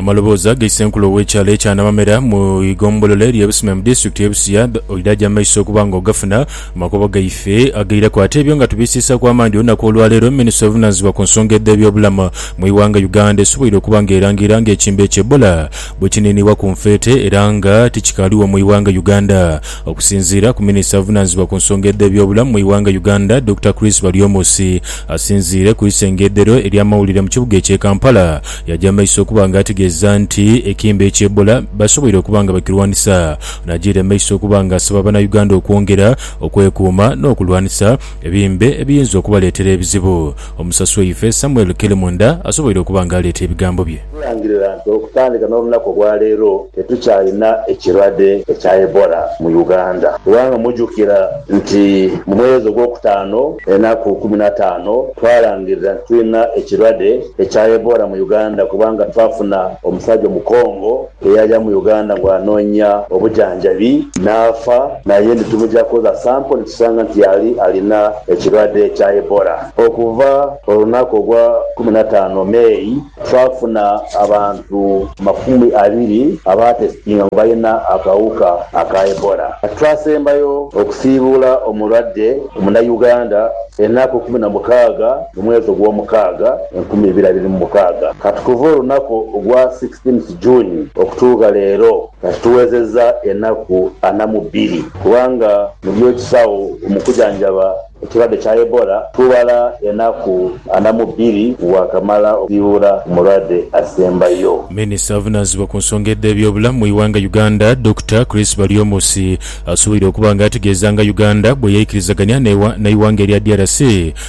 Amalobooza ga Issenkulu ow'ekyalo ekya Namamera mu ighombolola erye Busime mu disitulikiti y'e Busia oidha aja mu maiso okuba nga ogafuna mu makubo gaife agaireku ate ebyo nga tubisiisaaku amaani olunaku olwaleero Minisitule evunaanyizibwa ku nsonga edh'ebyobulamu mu ighanga Uganda esoboire okuba nga erangira nga ekimbe kya Ebola bwekiniinibwa ku nfeete era nga tikikaaligho mu ighanga Uganda. Okusinziira ku minisita avunaanizibwa ku nsonga edh'ebyobulamu mu ighanga Uganda Dokita Chris Baryomusi asinziire ku isengedhero ery'amawulire mu kibuga ekye Kampala yaja maiso okuba nga ategeeza nti ekimbe ekye Ebola basoboire okuba nga bakirwanisa najaire maiso okuba nga asaba banauganda okwongera okwekuuma n'okulwanisa ebimbe ebiyinza okubaleetera ebizibu Omusasi waife Samuel Kelemunda asoboire okuba nga aleeta ebigambo bye. Tulangirira nti okutandika n'olunaku olwaleero tetukyalina ekirwadde ekya Ebola mu Uganda kubanga mujukira nti mu mwezi ogwokutaano enaku kkumi na taano twalangirira nti tulina ekirwadde ekya Ebola mu Uganda kubanga twafuna omusajja omukongo Eyaja mu Uganda nga anoonya obujanjabi naafa naye nti tumugya kukoza sampo nitusanga nti yali alina ekirwadde kya Ebola. Okuva olunaku ogwa kumi na taano May twafuna abantu makumi abiri abaatesitinga ngu balina akawuka aka Ebola. Twasembayo okusiibuula omulwadde Omunayuganda enaku kumi na mukaaga. mu mwezi ogw'omukaaga enkumi ibiri abiri mu mukaaga, kati kuva olunaku ogwa sixteenth June okutuugha leero kati tuwezeza enaku ana mu bbiri kubanga mu by'ekisagho mu kujanjaba ekirwadde kya Ebola tubala enaku ana mu bbiri bwakamala okusiiwura omulwadde asembayo. Minister avunanzibwa ku nsonga edhe by'obulamu mu ighanga Uganda Dokita Chris Baryomusi asubwire okuba nga ategeeza nga Uganda bweyeikirizaganhia neighanga erya DRC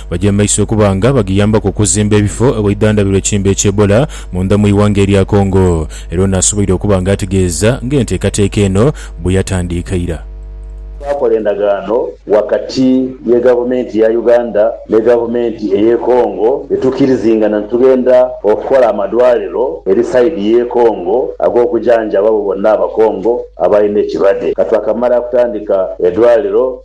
Baja maiso okuba nga bagiyambaku okuzimba ebifo ewaidhandhabirwa ekiimba ekye Ebola mundha mu ighanga erya Congo era ono asoboire okuba nga ategeeza nga enteekateeka eno bweyatandiika ira. Twakola endagaano wakati ye gavumenti ya Uganda ne gavumenti eye Congo yetukirizingana nitugenda okukola amadwaliro eri side ye Congo agokujanjaba abo bonna abakongo abalina ekirwadde katwakamala kutandika edwaliro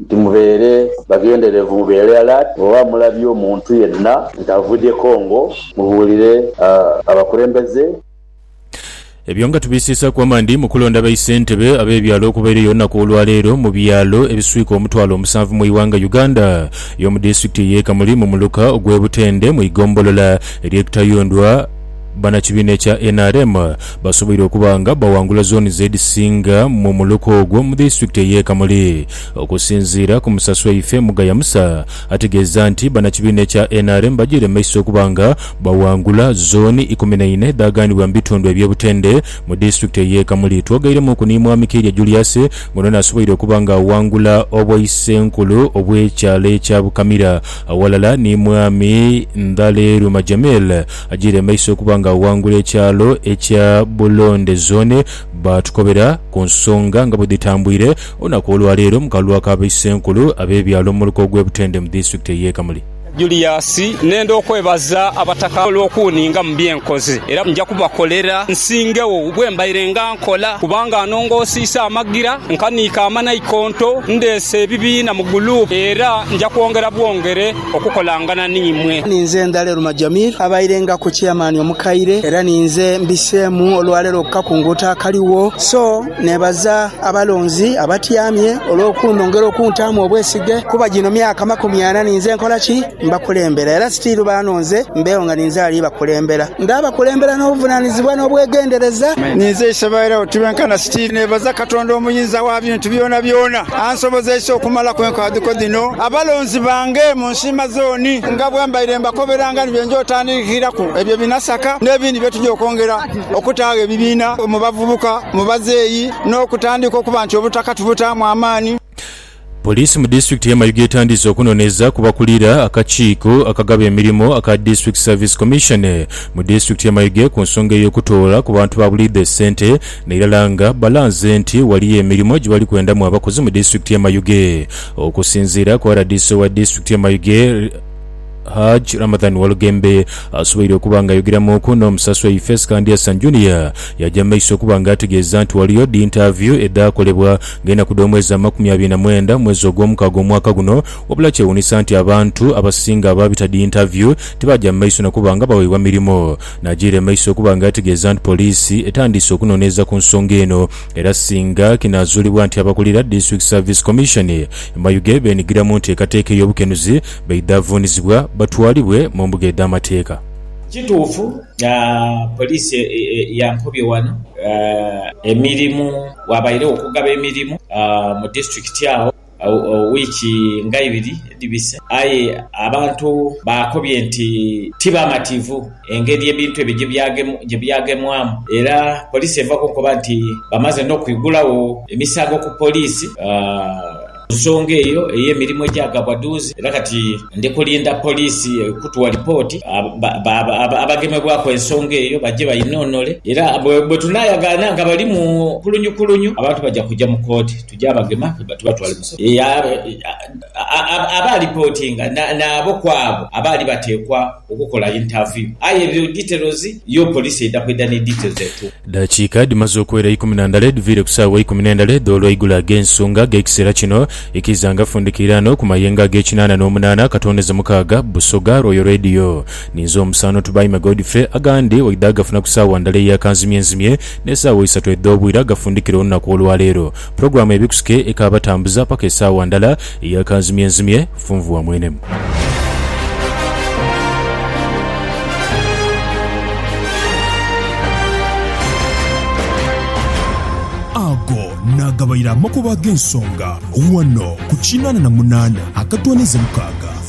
Nti mubeere babyenderevu, mubeere alert, bwoba mulabye omuntu yenna nga avudhye Congo mubuulire abakulembeze. Ebyo nga tubisiisaku amaani mu kulonda ba Isentebe ab'ebyalo okubaireyo olunaku olwaleero mu byalo ebiswika omutwalo omusanvu mu ighanga Uganda y'omu disitulikiti ey'e Kamuli mu muluka ogw'e Butende mu igombolola ery'e Kitayundwa Bannakibiina ekya nrm basoboire okuba nga bawangula zooni z'edhisinga mu muluka ogwo mu disitulikiti ey'e Kamuli. Okusinziira ku Musa Sweife, Mugaya Musa ategeeza nti bannakibiina ekya nrm bajiire maiso okuba nga bawangula zooni ikumi na ina edhaaganibwa mu bitundu eby'obutende mu disitulikiti ey'e Kamuli. Twogairemuuku ni Mwami Keirya Julius nga ono asoboire okuba nga awangula obwaisenkulu obw'ekyalo ekya Bukamira awalala ni Mwami Ndhaleeruma Jamil Ajiire emaiso okuba nga awangula ekyalo ekya Bulonde Zone baatukobera ku nsonga nga bwedhitambwire olunaku olwaleero mu kalulu aka Baisenkulu ab'ebyalo mu muluka ogw'e Butende mu disitulikiti ey'e Kamuli. Julius nenda okwebaza Abataka olw'okuuninga mu bye nkoze era nja kubakolera nsingegho bwe mbairenga nkola kubanga anongoosiisa amagira, nkaniika amanaikonto, ndeese ebibiina mu guluupu era nja kwongera bwongere. okukolangana n'imwe. Ni nze Ndhaleru Majamir abairengaku Chairman omukaire era ni nze mbiseemu olwaleero okukakunguuta akaligho. So neebaza abalonzi abatyamye olw'okundhongera okuntaamu obwesige kuba gino myaka makumi ana ni nze nkola ki? Mbakulembera era sitiiru baanonze mbeegho nga ni nze ali bakulembera. Ndaabakulembera n'obuvunaanizibwa n'obwegendereza. Ni nze Isebwaire abo tibenkana sitiiru neebaza Katonda Omuyinza wa bintu byonabyona. Ansobozeisa okumalaku enkadhiko dhino abalonzi bange mu nsiima zooni nga bwe mbaire mbakoberanga ni bye nja otandiikiraku ebyo bi nasaka n'ebindi bye tuja okwongera okutaagho ebibiina mu bavubuka, mu bazeeyi n'okutandiika okuba nti obutaka tubutaamu amaani. Poliisi mu disitulikiti ye Mayuge etandiise okunoneeza ku bakulira akakiiko akagaba emirimo aka District Service Commission mu disitulikiti ye Mayuge ku nsonga ey'okutoola ku bantu ba buliidho esente Nairala nga balanze nti ghaliyo emirimo gyebali kwendamu abakozi mu disitulikiti ye Mayuge. Okusinziira ku rdc owa disitulikiti ye Mayuge, Hajj Ramadhan Walugembe asoboire okuba nga ayogeramuuku n'omusaswa ife Skandiasan Junior yaja mu maiso okuba nga ategeeza nti ghaliyo dintaaviyu edhaakolebwa nga enaku dh'omwezi amakumi abiri na mwenda omwezi ogwomukaaga omwaka guno wabula kyewuunisa nti abantu abasinga abaabita dintaaviyu tibaaja mu maiso nakuba nga baweebwa mirimo Najiira emaiso okuba nga ategeeza nti poliisi etandiise okunoneeza ku nsonga eno era singa kinaazuulibwa nti abakulira District Service Commission e Mayuge beenhigira mu nteekateeka ey'obukenuzi baidha vuunizibwa batwalibwe mu mbuga edh'amateeka. Kituufu poliisi yankobye wano emirimu, waabairegho okugaba emirimu mu disitulikiti agho. wiiki nga ibiri edhibise, aye abantu baakobye nti ti bamativu engeri ebintu ebyo gye byagemwamu era poliisi eva kunkoba nti bamaze n'okwigulagho emisango ku poliisi ku nsonga eyo ey'emirimu egyagabwa duuzi era kati ndi kulinda poliisi kutuwa lipooti abagemebwaku ensonga eyo baje bainonole era bwe tunaayagaana nga bali mu kulunyukulunyu abantu baja kuja mu kooti. Gyabagema nga tubatwala mu sitooki yaabwe. Abaalipootinga nabo kw'abo abaali bateekwa okukola intaviyu. Aye ebyo diterozi yo poliisi eidha kwidha ni diterozi entuufu. Edhakiika dhimaze okuwera ikumi na ndala edhiviire ku saawa ikumi n'endala edh'olweigulo ag'ensonga ag'ekiseera kino, ikiza nga fundikiiraano ku mayengo ag'ekinaana n'omunaana akatooneza mukaaga, Busoga, Royal Radio, ni Nze Omusaano Tubaime Godfrey, agandi oidha agafuna ku saawa ndala eya kanzimyenzimye. N'esaawa isatu edh'obwira gafundikire olunaku olwaleero. Pulogulaamu ebikusuke ekaabatambuza paka esaawa ndala eya kanzimyenzimye, funvu wa mwene. Ago naagabaire amakubo ag'ensonga ghano ku kinaana na munaana akatooneza mukaaga.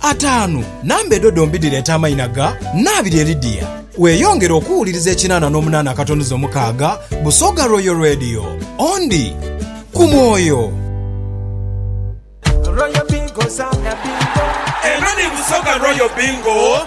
Ataanu, Namba edho dhombi dhireeta amaina ga Nnaabirye Lydia. Weeyongere okuwuliriza ekinaana n'omunaana akatonuza omukaaga Busoga Royal Radio. Ondi ku mwoyo. Eno ni Busoga Royal Bingo.